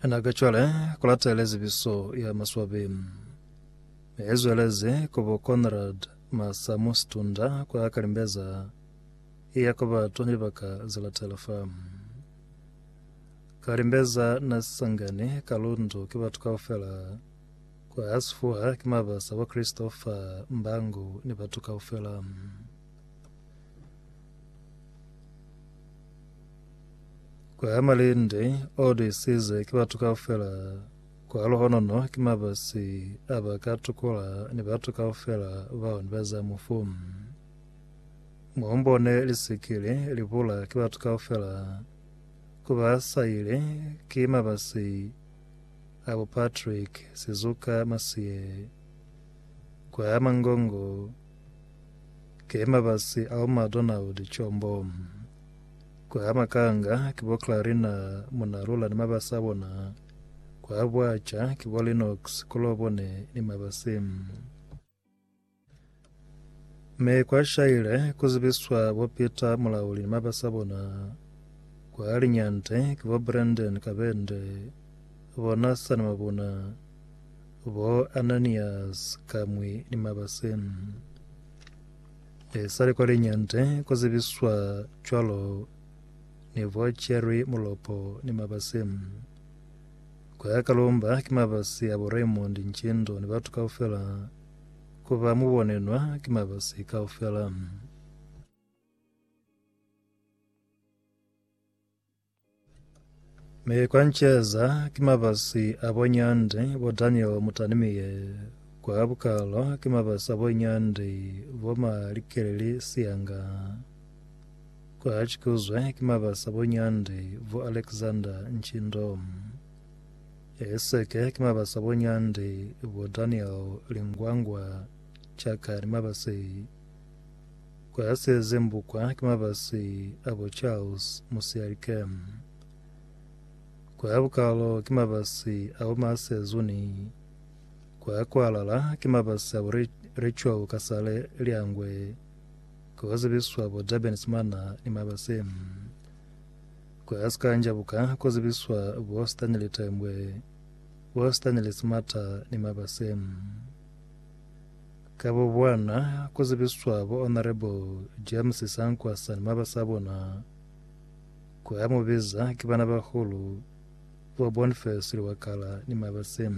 Ena ka cwale kulatele zibiso ya maswabi. Ezwelezi kubo Conrad Masamu Situnda kwa kalimbeza iya kwa batu ni libaka zilatela fa. Kalimbeza na sisangani ka lundu ki batu kaufela kwa sifuha ki mabasa wa Kristo fa mbango ni batu kaufela. Kwa ya malende o disize ki batu kaufela kwa lohonono ki mabasi a ba ka tukula ni batu kaufela bao ni ba za mufu. Muombone lisikile libula ki batu kaufela ku ba saile ki mabasi a bo Patrick Sizuka Masie kwa ya mangongo Ki mabasi ao matuna ho licombo. Ku ha makanga ki bo Clarina, Munalula ni mabasi a bona. Ku ha bwaca ki bo Linox, Kolobone ni mabasi. Mi kwa shaile ku zibiswa bo Peter Mulauli ni mabasi a bona. Ku ha linyante ki bo Brandon Kabende, bo Nathan Mabuna, Bo Ananias ka mwi ni mabase. Ne sali kwa linyante ku zibiswa cwalo ne bo Jerry Mulopo ni mabase. Kwa Kalumba ki mabasi ya bo Raymond Nchindo ni batu kaufela ku ba mu bonenwa ki mabasi kaufela. Mi kwa nceza ki mabasi a bo Nyandi, bo Daniel Mutanimiye, kwa bukalo ki mabasi a bo Nyandi, bo Malikeleli Siyanga, kwa Chikuzwe ki mabasi a bo Nyandi, bo Alexander Nchindo, Eseke ki mabasi a bo Nyandi, bo Daniel Lingwangwa, Chaka ni mabasi kwa se zembukwa ki mabasi a bo Charles Musialikem, kwa bukalo ki mabasi a bo Marcel Zuni, kwa kwalala ki mabasi a bo Rachel Kasale Liangwe, ko zibiswa bo Durban Simana ni Mabasem, kwa Sikanjabuka ko zibiswa bo Stanley Tembwe, bo Stanley Simata ni Mabasem. Ka bo bona, ku zibiswa bo Honourable James Sankwa sani maba sa bona, ku ya mu biza ki bana bahulu, bo Boniface Liwakala ni maba se.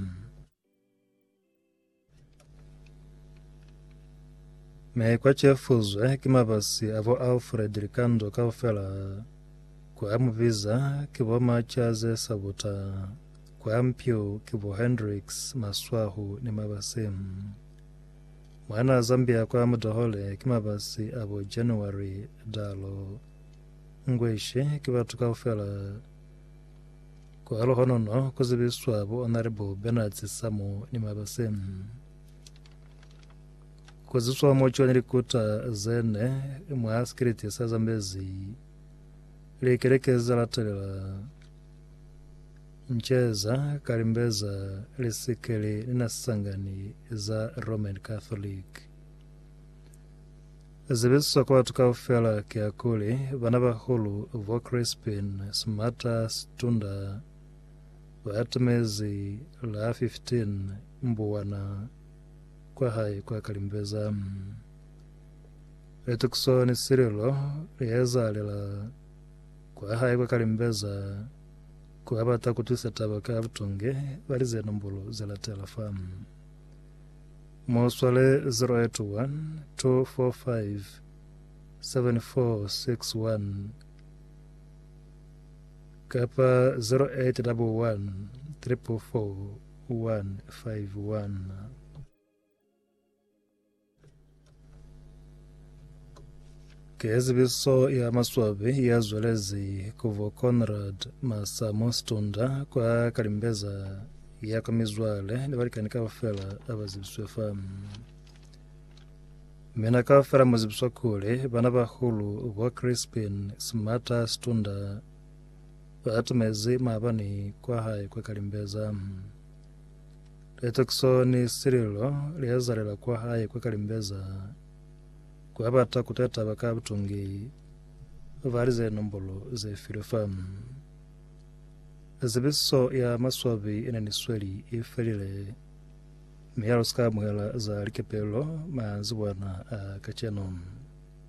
Mi kwa cefuzwe ki mabasi a bo Alfred Likando kaufela, ku ya mu biza ki bo Machaze Sabuta Kwa mpio ki bo Hendricks, Maswahu ni Mabase. Mwanaa Zambia kwa Mudahole ki Mabase a bo January, Dalo. Ngweshi ki batu kaufela. Kwa Luhonono ku zibiswa bo Honourable Bernards Samu ni Mabase. Ku ziswa mo John Likuta zene mwa sikiliti sa Zambezi. Likeleke za latelela. Nceza ka limbeza li sikeli ni na sisangani za Roman Catholic. Zibiswa kwa batu kaufela kiakuli bana bahulu bo Crispin Smata Situndwa baatumezi la 15 Mbuwana kwa hae kwa Kalimbeza. Litukiso ni sililo liezaalela Ku a hae kwa kalimbeza ku a bata ku twisa taba ka butonge ba li ze nombulo ze latela fa. Mu swale 0812457461 kapa 0811344151. Ke zibiso ya maswabi ya zwelezi kubo Conrad Masamo Stunda kwa Kalimbeza ya kwa mizwale ni balikani kaufela abazibiswe fa mina kaufela muzibiswa kule bana bahulu bo Crispin Smata Stunda batumezi maabani kwa hae kwa Kalimbeza. Litekiso ni sililo liezalela kwa hae kwa kalimbeza kwa bata kuta taba ka butungi. Bali ze nombolo ze filwe fa. Zibiso ya maswabi ine ni sweli i felile, mi ha lu si ka amuhela za likepelo manzibwana a kacenu.